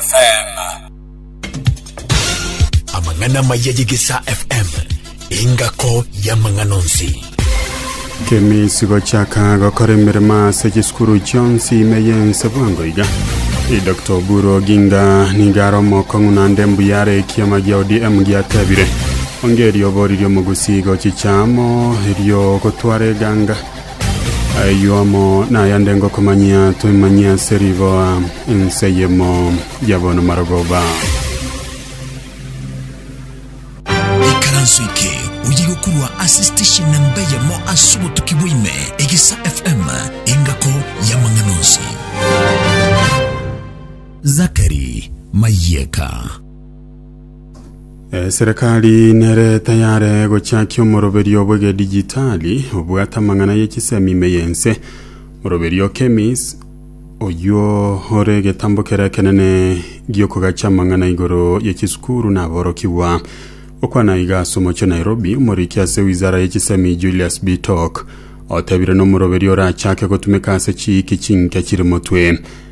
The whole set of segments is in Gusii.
FM. Amang'ana amaya y'Egesaa FM, engako y'amang'ana onsi. Kemisi gochaka gokora emeremo ase chisukuru chionsi ime yense bwango iga Dr. Oburu Oginga niga are omokong'u naende mbuya are ekiama gia ODM giatebire onge erio oboriri omogusii gochicha amo erio ogotwara eganga Ayio amo nayande ngokomanyia twemanyie ase riboa ense eyemo ya bonomarogoba. Ikaranso eke oyigokorwa ase station namba eyemo ase obotuki bwa ime, Egesa FM, engako y'amang'ana onsi. Zachary Mayeka. Eserekari nere tayare gochakia omoroberio bw'egedijitali obwate amang'ana y'echisemi ime y'ense. Moroberio Kemis oyio ore egetambo kere ekenene gi'okogacha amang'ana igoro y'echisukuru na aborokigwa. Okwana iga ase omochie o Nairobi, omoriki ase wizara y'echisemi Julius Bitok otebire nomoroberio orachake gotumeka ase chiiki chinke chiri motwe.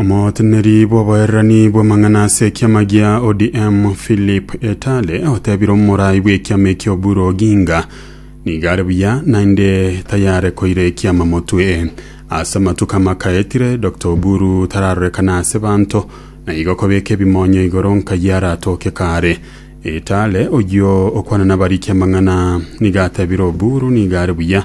Omoteneri bw'obohererani bw'amang'ana ase ekiama gia ODM Philip Etale otebire omorai bw'ekiama ekio Oburu Oginga nigo are buya naende tayare koira ekiama motwe. Ase amatuko amaka etire Dr Oburu tararorekana ase banto na igo kobeka ebimonyo igoro nkayi aratoke kare. Etale oyio okwana nabarikia amang'ana nigo atebire Oburu nigo are buya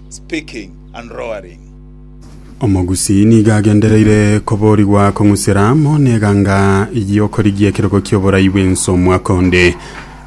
speaking and roaring. Omogusii nigo agendereire koborigwa kong'usera amo n'eganga y'okorigia ekerogo ki'oborai bw'ense omwaka onde.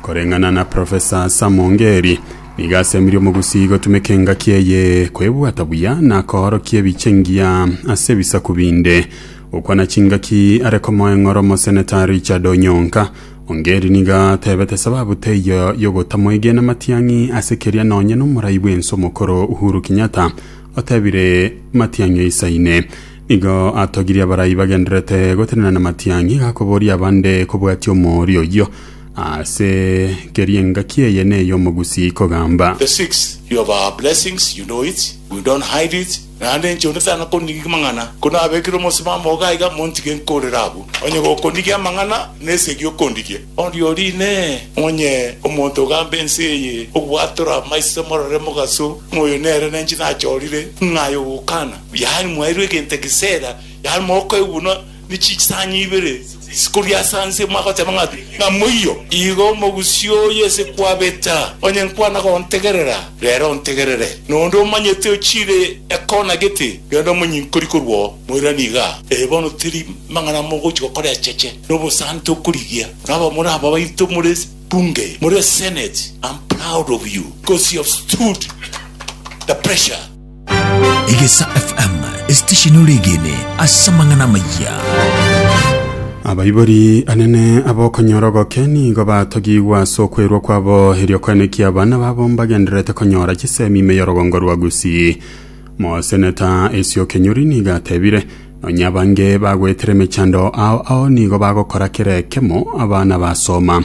Koreng'ana na Profesa Sam Ongeri, nigo asemirie omogusii gotumeka engaki eye kwebwata buya na koorokia ebiche engiya ase ebisaku binde. Gokwana chingaki are komoa eng'oro Omoseneta Richard Onyonka Ongeri nigo atebete sababu teiyo yogotamwegena Matiang'i ase keria nonye nomorai bw'ense omokoro Uhuru Kenyatta otebire Matiang'i oisaine. Nigo atogirie abarai bagendererete gotenena na Matiang'i gakoboria abande kobwatia omooria oyio ase keria engaki eye ney'omogusii kogamba. The sixth, you have our blessings, you know it, we don't hide it. Naende inche onde tana konigia amang'ana, konabekire omosimamo ogo aiga, montige nkorere abwo. Onye gokonigia amang'ana, nesegi okondigia. Oria oria Inee! Onye omonto ogamba ense eye, Obwatora amaiso, morore mogaso, ng'a oyo nere nenche nachorire, ng'ai ogokana? Yaani mwairwe egento egeseera, yaani mokoigwa buna ne chinsanya ibere chikoria ase anse, mwagoteba ng'a pi? Ng'a moiyo. Igo omogusii oye ase kwabeta, onye nkwana gontegerera, rero ontegerere, na onde omanyete ochire ekona gete, rende omonyinkori korwa oo. Moirani iga, ee, bono teri mang'ana mogochi gokora echeche, na obosante okorigia, na abamura aba baito more bunge, more senate, am proud of you, because you have stood the pressure. Egesa FM, esitesheni ore egene ase amang'ana amayia. abaibori anene abokonyora ogoke nigo batogigwa ase okwerwa kwabo erio koenekia abana babo mbagendererete konyora chisemi ime y'orogongo rwa gusii moseneta esio kenyori nigo atebire nonya abange bagwetire emechando ao ao nigo bagokora kere ekemo abana basoma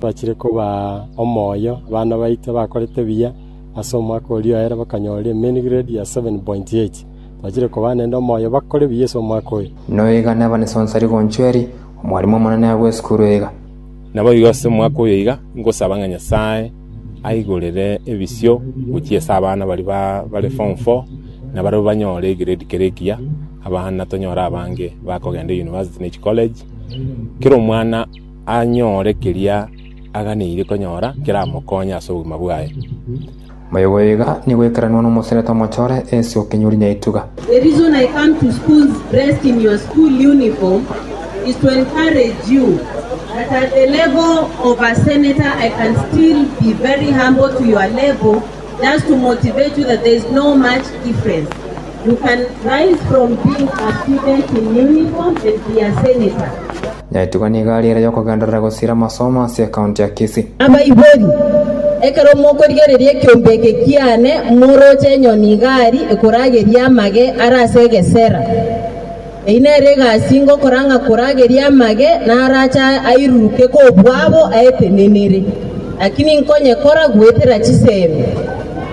Twachire kobaa omoyo abana baito bakorete buya ase omwaka oria oere bakanyora emain grade ya 7.8. Twachire kobaa nende omoyo bakore buya ase omwaka oyo. Noiga neba nesonsa rigonchweri omwarimu omonene agwo esukuru iga. Naboigo ase omwaka oyo iga ingosaba ng'a Nyasae aigorere ebisio gochia ase abana baria bare form four na barabwo banyore egrade kere ekiya, abana tonyore abange bakogenda university na echicollege, kera omwana. anyore keria aganeire konyora keramokonye ase obogima bwaye. Moyo goiga nigo oikaranwa nomoserete omochore ase okenyuri na etuga. Nyaitwa nigo ari ere y'okogenderera gosira amasomo ase ekaunti ya Kisii. Abaibori, ekero mokorigereria ekiombe eke kiane, moroche enyoni igari ekorageria amage are ase egesera. Eyio nero egasi ngokora ng'a korageria amage narache airuruke kobua abo aetenenire, lakini nkonyekora goetera chisemi.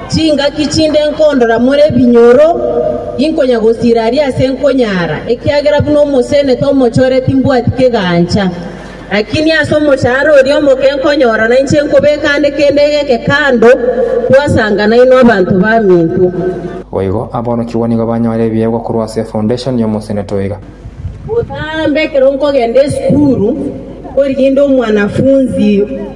Chingaki chinde nkondora more ebinyoro, inkonya gosiira aria aase nkonyaara, ekiagera buna omosenete omochore timbwati kegancha. Lakini ase omochando oria omoke nkonyora nainche nkobeka aande kende egeke kando, twasanga nainwe abanto baminto. Boigo aborokigwa nigo banyore ebiegwa korwa ase efoundation y'omosenete oyo iga. Botambe ekero nkogenda esukuru, koriginde omwanafunzi.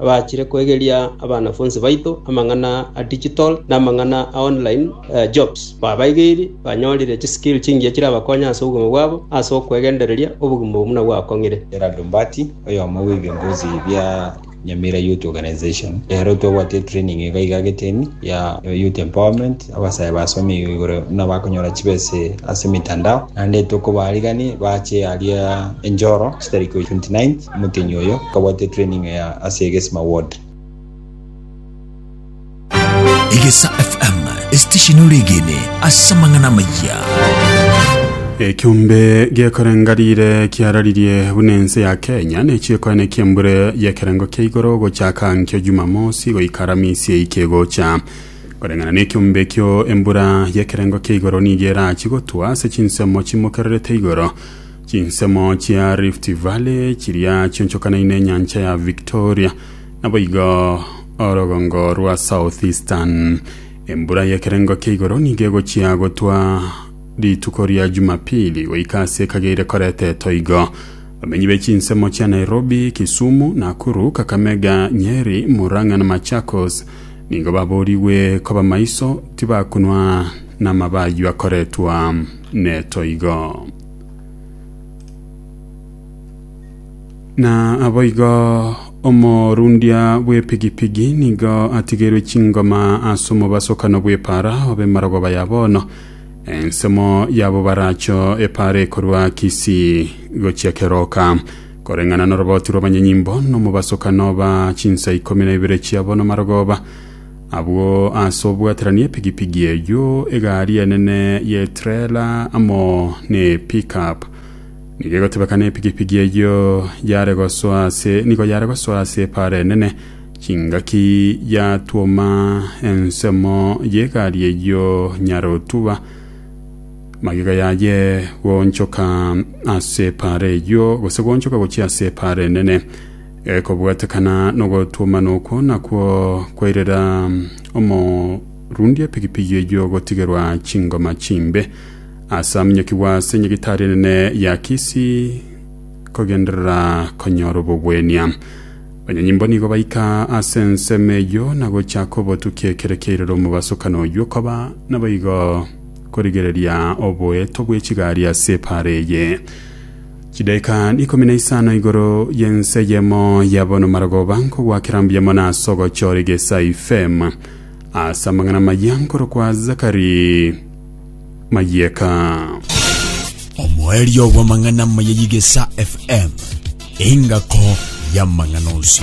Abachire kwegeria abanafonsi baito amang'ana a digital na amang'ana a online jobs babaigeiri banyorire chiskill chingiya chirabakonye ase obogima bwabo ase okwegendereria obogima obo buna gwakong'ire. Gerald Mbati, oyomo bw'ebiongozi bia Nyamira Youth Organization, Rero twabwate etraining iga iga agetemi ya Youth Empowerment, Abasae basomigwe igoro nabakonyora chibese ase emitandao, naende tokobaarigania bache aria enchoro chitari koigwa 29th, omotenyi oyo akabwate training eye ase egesima ward. Egesa FM, esitesheni ore egene ase amang'ana amayia. Ekiombe giekorenga rire kiararirie buna ense ya Kenya nechiekoene kiembure yekerengo kia igoro gochaka nkio Jumamosi goika Aramisi eike gocha Koreng'ana nekiombe ekio embura y'ekerengo kia igoro nigo erachie gotwa ase chinsemo chimokererete igoro. Chinsemo chia Rift Valley chiria chionchokanaine enyancha ya Victoria, naboigo orogongo rwa Southeastern. Embura y'ekerengo kia igoro nigo egochia gotwa rituko ria Jumapili goika ase ekageire koreta etoigo. Bamenyi be chinsemo chia Nairobi, Kisumu, Nakuru, Kakamega, Nyeri, Murang'a na Machakos Nigo baboorigwe koba maiso, tibakonwa namaba ayio akoretwa netoigo. Na aboigo omorundia bw'epigipigi nigo atigeirwe chingoma ase omobasokano bw'epaara obe marogoba ya bono. Ensemo yabo baracho epaara ekorwa Kisii gochia Keroka. Koreng'ana noroboti rw'abanyanyimbo, nomobasokano oba chinsa ikomi na ibere chiabo namarogoba abwo ase obwaterani, epigipigi eyio, egari enene y'etrela amo nepickup. Nigo egotebekana epigipigi eyio yare gosoa ase nigo yare gosoa ase epaara enene, chingaki yatwoma ensemo y'egari eyio nyare otuba, Magega yaye goonchoka ase epaara eyio, gose goonchoka gochia ase epaara enene, ekobwatekana nogotwomana okwo nakwo kwairera omorundi epigipigi eyio gotigerwa chingoma chimbe, ase aminyokigwa ase nyagitari enene ya Kisi kogenderera konyora obogwenia. Banyanyimbo nigo baika ase ensemo eyio na gochaka obotukia ekero kiairera omobasokano oyio koba naboigo. Korigereria oboeto bwe chigari ase epaara eye. Chidaika ikomi na isano igoro y'ense eyemo ya bono marogoba nkogwakera mbuya mono ase ogochora egesa ifem. Ase amang'ana amaya nkorokwa Zakari Mayeka. Omoerio bw'amang'ana amaya y'egesa FM, engako y'amang'ana onsi.